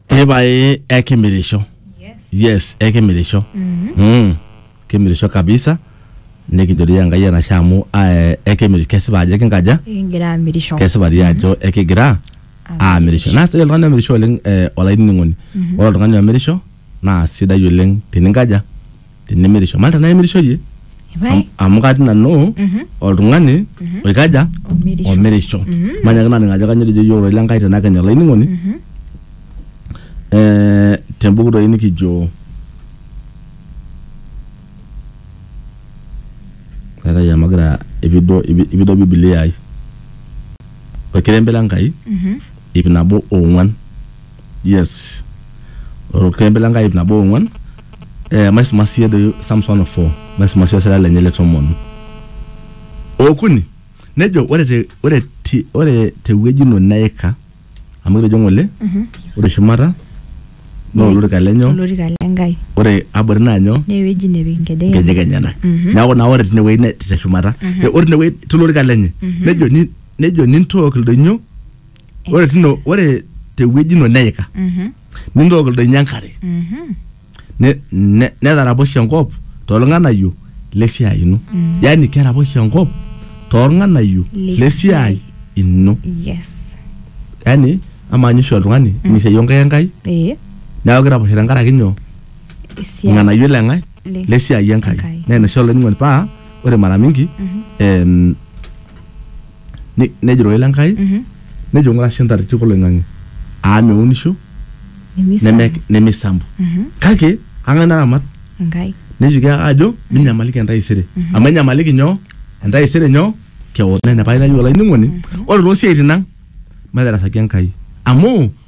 ebae ekimirisho Yes. yes ekimirisho mm. kimirisho kabisa nikijori enkai enashe amu eh, ekimir kesipa ajo ekinkaja Ekigira amirisho. kesipa dii ajo ekigira aamirisho naa sidai oltung'ani omirisho oleng eh, olainining'oni ore oltung'ani omirisho naa sidai oleng tininkaja tenimirisho malta naimirisho yie Ipae. Am- amu katii nanu oltung'ani oikaja Omirisho. omirisho manyaki naning ajo kanyo etejo yiok ororei lenkai tenakenya olainining'oni Eh, tembuku doi nikijo etai amu agira ipido ipi- ipido bibilia ai orkerembe lenkai ip nabo ong'uan yes orkembe le nkai ip nabo ong'uan eh, maisuma siye doi Psalms 104 maisuma siye osira lenye le tomon okuni nejo ore te ore ti ore tewueji ino neika amu kitejo ng'ole ore shumata naa olorika lenyo olorika le Nkai ore abori naa nyoo naa ewueji nepik nkejek nkejek enyenak neeku naa ore tinewueji ne- te shumata Eh, ore tinewueji tolorika lenye nejo ni- nejo nintook ildoinyo ore tino ore tewueji ino neika Mhm, nintook ildoinyo enkare mhm. ne- ne- netaraposhe enkop toolng'anayio lesiai ino yaani keraposhe enkop toolng'anayio Lesiai. lesiai ino yes yaani amaa ninye oshi oltung'ani misiai onkaik enkai ee neeku kiraposhe tenkaraki nyoo esiai irng'anayio leng'ae Le- lesiai enkai Enkai. naa ina oshi olainining'oni paa ore mara mingi em, Ne- nejo ororei le Nkai Mhm. nejo ng'ura sii entareti oloing'ang'e aa meunisho Nemisa. neme- nemeisambu Mhm. kake kang'ae naramat Enkai. nejoki ake ajo minyamaliki entaisere amu enyamaliki nyoo entaisere nyoo kewon naa ina paailayu olainining'oni ore toosiaitin ang matarasaki Enkai amu